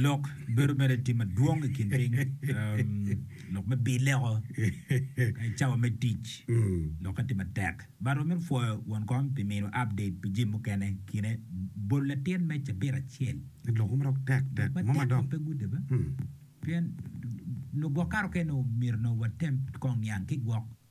Lok bedo mere tim madwong i kin piny, lok me bil leko ka i cawa me tic lokke tye matek. But wamito pwoyo won kom pi miyowa update pi jami mukene i kine. Bol latin me cabit acel. Lok matek ma pe gudi be pien lugwok kato kene omyero nongo watem kong niang ki gwok.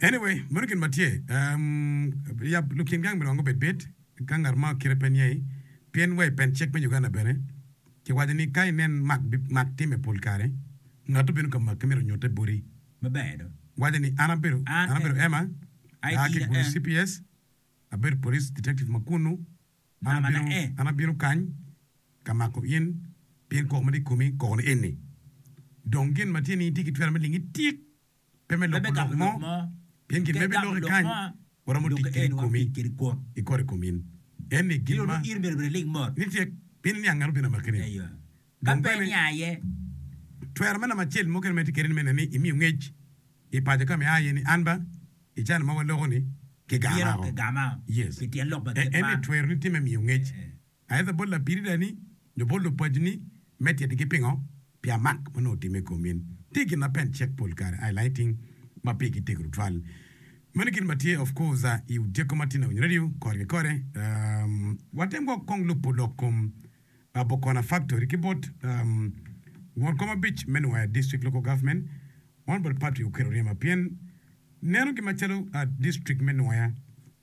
Anyway, meno gin ma tye. Yab lukin gang biromo bed bit ka ngat mo kite pe niye, pien wa i pen cik me Uganda bene ki waco ni ka inen mak time pol kare, ngatto bino ka makke mito nyutte boti maber do. Waco ni an abedo an abedo Emma, aa ki Gulu cps, abedo police detective ma kunnu, an abino kany ka mako in pien koko ma tye i komi koko ni eni. Dong gin ma tye ni itye ki twero me lingi tik. pe me loko lok mo, pien gin ma ibiloki kany waromo tic kede komi i kor i kom in. Eni gin ma ni tye piny niang ngano bino amakine. Dong bene, twero me lamacel mukene ma itye kede-ni mene ni imiyo ngec i paco ka ma ia iye ni an ba i can ma waloko-ni kigama-o. Eni twero ni tye me miyo ngec Aeto bot lapididani nyo bot lupacni me titigi pingo pi amak ma onongo otimme i kom in. Tye gin ma pen cek pol kare ai lighting ma pigi tek tutwal. Meno gin ma tye of course i Odyeko Matin Awiny Radio kore ki kore. Watem gwok kong lubo lok kom Bokona Factory ki bot won kom abic me Nwaya District Local Government Honorable Patrick Okello Ryema pien neno gin macalo District me Nwaya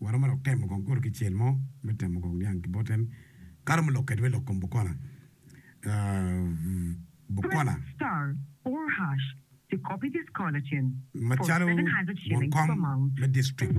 Waromo dok temo kong kuro ki cel mo me temo kong niang ki bote ni ka romo lok kedi me lok kom Bukola. Bukola. Macalo won kom me district.